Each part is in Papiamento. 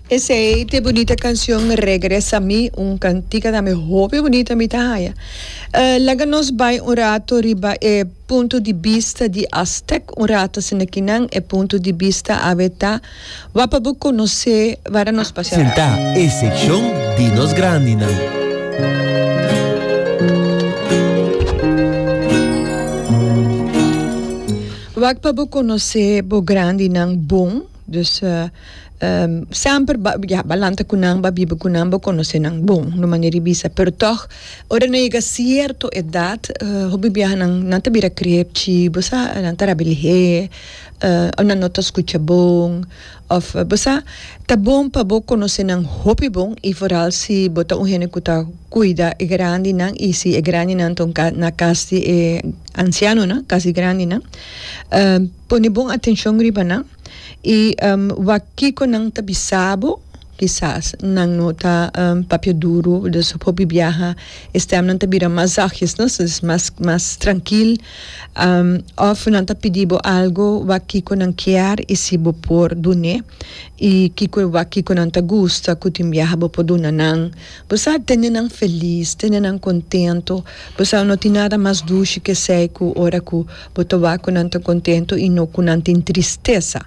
Esei t'e bunita cancion Regresa mi, un cantica tambe hopi bunita mi ta haya. Laga nos bai un rato riba e punto di bista di Aztec, un rato asina kinan e punto di bista awe ta, wa pa bo conoce wara nos pasha rato. Sentá e seccion di nos grandinan. Wak pa bo conoce bo grandinan bon, dus semper ba ya ba lanta cu nan, ba biba cu nan, bo conoce nan bon, un manera di bisa, pero toch ora nan yega cierto edad hopi biaha nan nan ta bira cree chi bo sa nan ta rabi lihé, nan no ta scucha bon. Òf bo sa, ta bon pa bo konosé nan hopi bon i foral si bo ta un hende ku ta kuida e grandinan i si e grandinan ta un ka na kas di e ansianonan, kas di grandinan. Pone bon atenshon riba nan i wak kiko nan ta bisa bo. Kisas nan no ta papia duru, dus ò hopi biaha e stèmnan ta bira mas zagis, no? So es mas, mas trankil. Òf nan ta pidi bo algu, wak kiko nan kier i si bo por dun'é. I kiko e wak kiko nan ta gusta ku tin biaha bo por duna nan. Bo sa, tende nan felis, tende nan kontentu. Bo sa, no tin nada mas dushi ke esei ku ora ku bo ta wak ku nan ta kontentu i no ku nan tin tristesa.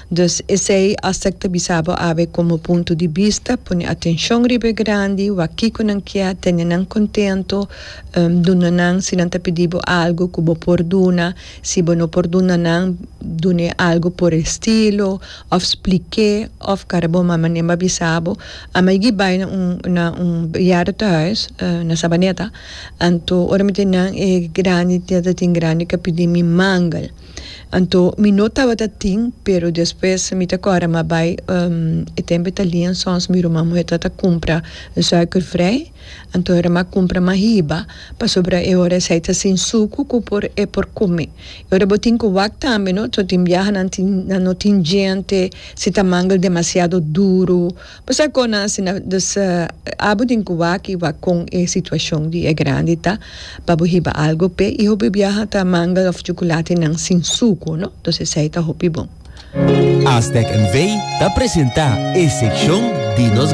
Dus esei hasta e ta bisa bo awe komo punto di bista, pone atenshon riba e grandi, wak kiko nan kia, tene nan kontento, duna nan si nan ta pidi bo algu ku bo por duna, si bo no por duna nan, dun'é algu por e stilo, òf splik'é, òf kara bo mama nen bo a bisa bo, a mai gi bai na un na un bejaardentehuis, na Sabaneta, anto ora mi tin nan e grandi, mi ta tin grandi, ka pidi mi mangel. Anto mi no tabata tin, pero despues mi ta kòrda m'a bai e tempo e ta lien sòns mi ruman muhé tabata kumpra zùikervrij, anto e ruman a kumpra mas hiba pasobra e ora esei ta sin suku ku por e por kume. E ora bo tin ku wak tambe, no? So tin biahanan tin nan no tin djente, si ta mangel demasiado duru. Pasa kon asina dus abu den ku waki wak kon e situashon di e grandi ta pa bo hiba algu p'e i hopi biaha ta mangel òf chukulatenan sin suku no dos esei ta hopi bon. Aztec NV ta presenta e sekshon di nos.